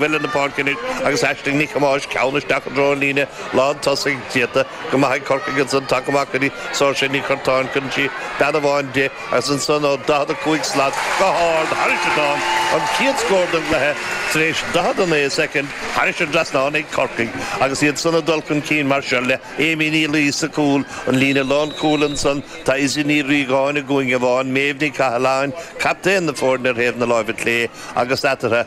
Bhailigh na páirce anois agus Aisling Nic Thomáis ceann isteach i dtreo an líne lán tosaigh, déanta go maith ag Corcaigh ansan, tagtha amach go dtí Sorcha Nic Artáin, cuireann sí bean amháin di, agus ansan ó 45 slat go hard thairis an dtrasnán, an chéad scór den gcluiche tar éis 49 soicind thairis an dtrasnán ag Corcaigh agus iad san ag dul chun cinn mar seo, le Amy Ní Laoi sa cúl, an líne lán cúil ansan, tá Izzy Ní Riagáin i gcúinne amháin, Méabh Ní Chathalláin, captaen na foirne ar thaobh na láimhe clé, agus eatartha,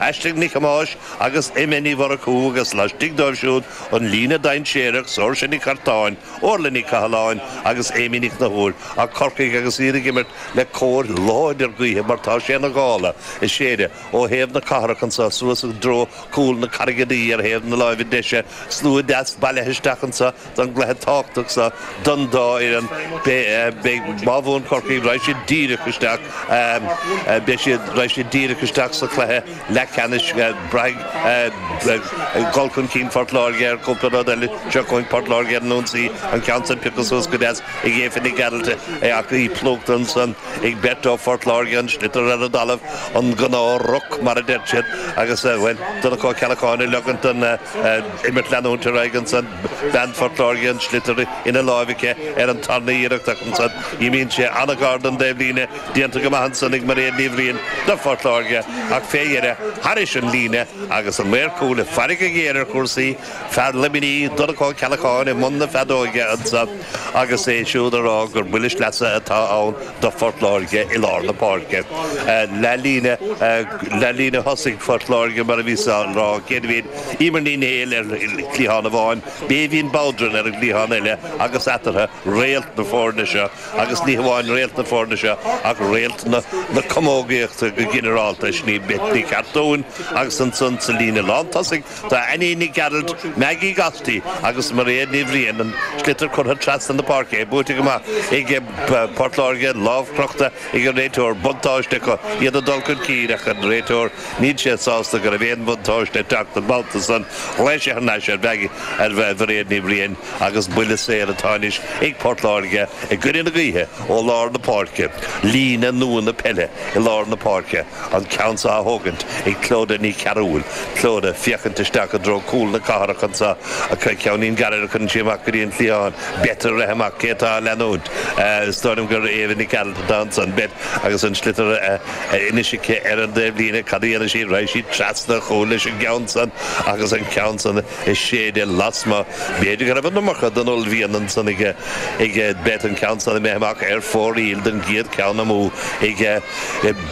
Aisling Nic Thomáis agus Emma Ní Mhurchú agus laistigh dóibh siúd an líne dainséarach Sorcha Nic Artáin, Órla Ní Chathalláin agus Amy Ní Chonchúir ag Corcaigh agus iad ag imirt le cóir láidir gaoithe mar tá sé ina ghála ag séideadh ó thaobh na cathrach anseo suas i dtreo cúl na Carraige Duibhe ar thaobh na láimhe deise slua deas bailithe isteach anseo don gcluiche tábhachtach seo don dá fhoireann. Beidh má bhuann Corcaigh, raghaidh siad díreach isteach, beidh siad, raghaidh siad díreach isteach sa chluiche leathcheannais. Braithfidh dul chun cinn Phort Láirge ar chúpla rud eile. Seo chugainn Port Láirge ar an ionsaí, an ceann sin pioctha suas go deas ag Éabha Nic Gearailt é, ach í plúchta ansan ag beirt ó Phort Láirge, an sliotar ar an dtalamh, an gnáth-ruc, mar a deir siad, agus, bhuel, Donncha Ó Ceallacháin ag ligeant don imirt leanúint ar aghaidh ansan. Bean Phortláirge an sliotar ina láimh aici ar an tarna iarracht ach ansan imíonn sé an-ghar don dtaobhlíne, déanta go maith ansan ag Mairéad Ní Bhriain do Phortláirge ach fé dheireadh, thairis an líne agus an maor cúil ag faire go géar ar chúrsaí, fear Luimnigh, Donncha Ó Ceallacháin i mbun na feadóige ansan agus é siúd ag rá gur buille sleasa atá ann do Phortláirge i lár na páirce. Leath líne, leath líne thosaigh Phortláirge mar a bhíos á rá, céad a bhíonn. Eimear Ní Néill ar chliathán amháin, Bébhinn Bowdren ar an gcliathán eile agus eatarthu, réalt na foirne seo agus ní hamháin réalt na foirne seo ach réalt na camógaíochta go ginearálta, sin í Beth Nic Artáin agus ansan sa líne lántosaigh tá Annie Nic Gearailt, Maggie Gostl agus Mairéad Ní Bhriain, an sliotar curtha trasna na páirce, é buaite go maith ag Port Láirge, lámh chrochta ag an réiteoir, buntáiste acu, iad ag dul chun cinn ach an réiteoir. Níl sé sásta go raibh aon bhuntáiste ag teacht an babhta san ghlaoigh sé thar n-ais ar Mhairéad Ní Bhriain agus buille saor atá anois ag Port Láirge i gcoinne na gaoithe ó lár na páirce, líne nua na peile i lár na páirce, an ceann seo á thógaint ag Clodagh Ní Chearúil, Clodagh ag féachaint isteach i dtreo cúl na cathrach anseo, ach ceann gairid a chuireann sí amach go dtí an cliathán, Beth ag rith amach, cé atá á leanúint, is dóigh liom gur Éabha Nic Gearailt atá ansan, Beth agus an sliotar a. Anois aici ar an dtaobhlíne cad a dhéanann sí. Raghaidh sí trasna, chúl leis an gceann san agus an ceann san á shéideadh lasmuigh. B'fhéidir go raibh an iomarca den uaillmhian ansan aige, aige Beth, an ceann san imithe amach ar fóraoil don gcéad ceann amú, aige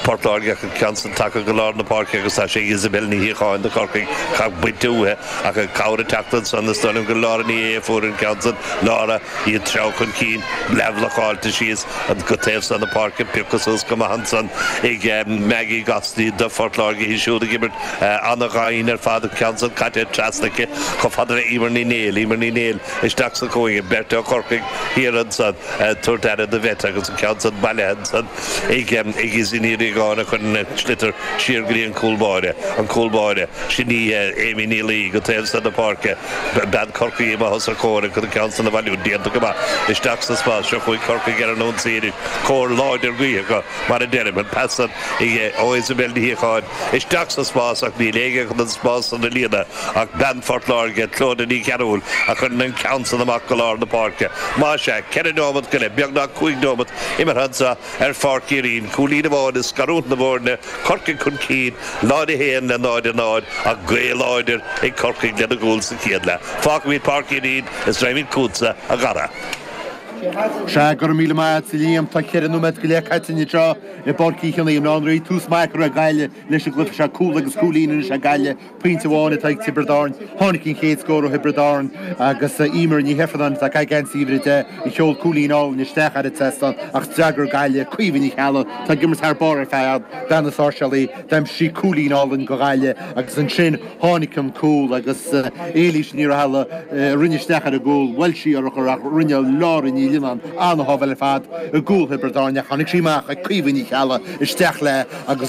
Port Láirge ach an ceann san tagtha go lár na páirce agus tá sé ag Isobel Ní Shíocháin do Chorcaigh. Ach bainte uaithi ach an chabhair ag teacht ansan. Is dóigh liom gur Lára Ní Aodha a fuair an ceann san. Lára. Bhí an treo chun cinn leathbhlocáilte síos an taobh so na páirce, an piocadh suas go maith ansan ag Maggie Gostl do Phort Láirge, í siúd ag imirt ana-dhian ar fad, an ceann san caite trasna aici chomh fada le Eimear Ní Néill. Eimear Ní Néill isteach sa chúinne, beirt ó Chorcaigh thiar ansan ag tabhairt aire do Bheth agus an ceann san bailithe ansan, ag Aisling Ní Aogáin a chuireann an sliotar siar go dtí an cúl báire, an cúl báire, sin í Amy Ní Laoi, go taobh so na páirce, bean Chorcaí amach os a comhair chun an ceann san a bhailiú, déanta go maith, isteach sa spás, seo chugainn Corcaigh ar an ionsaí anois, cóir láidir gaoithe acu, mar a deirim, an pas san ó Isobel Ní Shíocháin, isteach sa spás ach níl éinne chun an spás san a líonadh, Ach bean Phort Láirge, Clóda Ní Chearúil, a chuireann an ceann san amach go lár na páirce. Más ea, ceithre neomat go leith, beagnach cúig neomat, imeartha anso ar Pháirc Uí Rinn, cúilín amháin ag scarúint na bhfoirne, Corcaigh chun cinn, 0-1 le 0-0, ach gaoth láidir ag Corcaigh lena gcúl sa chéad leath. Fágfaimid Páirc Uí Rinn is raghaimid chugatsa, a Dhara. Sea, go raibh míle maith a't, a Liam. Tá ceithre nóiméad go leith caite anseo i bPáirc Uí Chionnaith i mBaile Átha an Rí. Tús maith curtha ag Gaillimh leis an gcluiche seo, cúl agus cúilín anois ag Gaillimh. Pointe amháin atá ag Tiobraid Árann. Tháinig an chéad scór ó Thiobraid Árann agus Eimear Ní Ifearnáin atá ag caitheamh uimhir a deich a sheol cúilín álainn isteach ar an seastán ach d'fhreagair Gaillimh, Caoimhe Ní Cheallaigh atá ag imirt thar barr ar fad, bean na Sáirséalaí, d'aimsigh cúilín álainn do Ghaillimh agus ansin tháinig an cúl agus Éilís Ní Raghallaigh a rinne isteach ar an gcúl. Bhuail sí urchar ach rinne Laura Ní Lionnáin an-shábháil ar fad i gcúl Thiobraid Árann ach tháinig sí amach ag Caoimhe Ní Cheallaigh isteach léi agus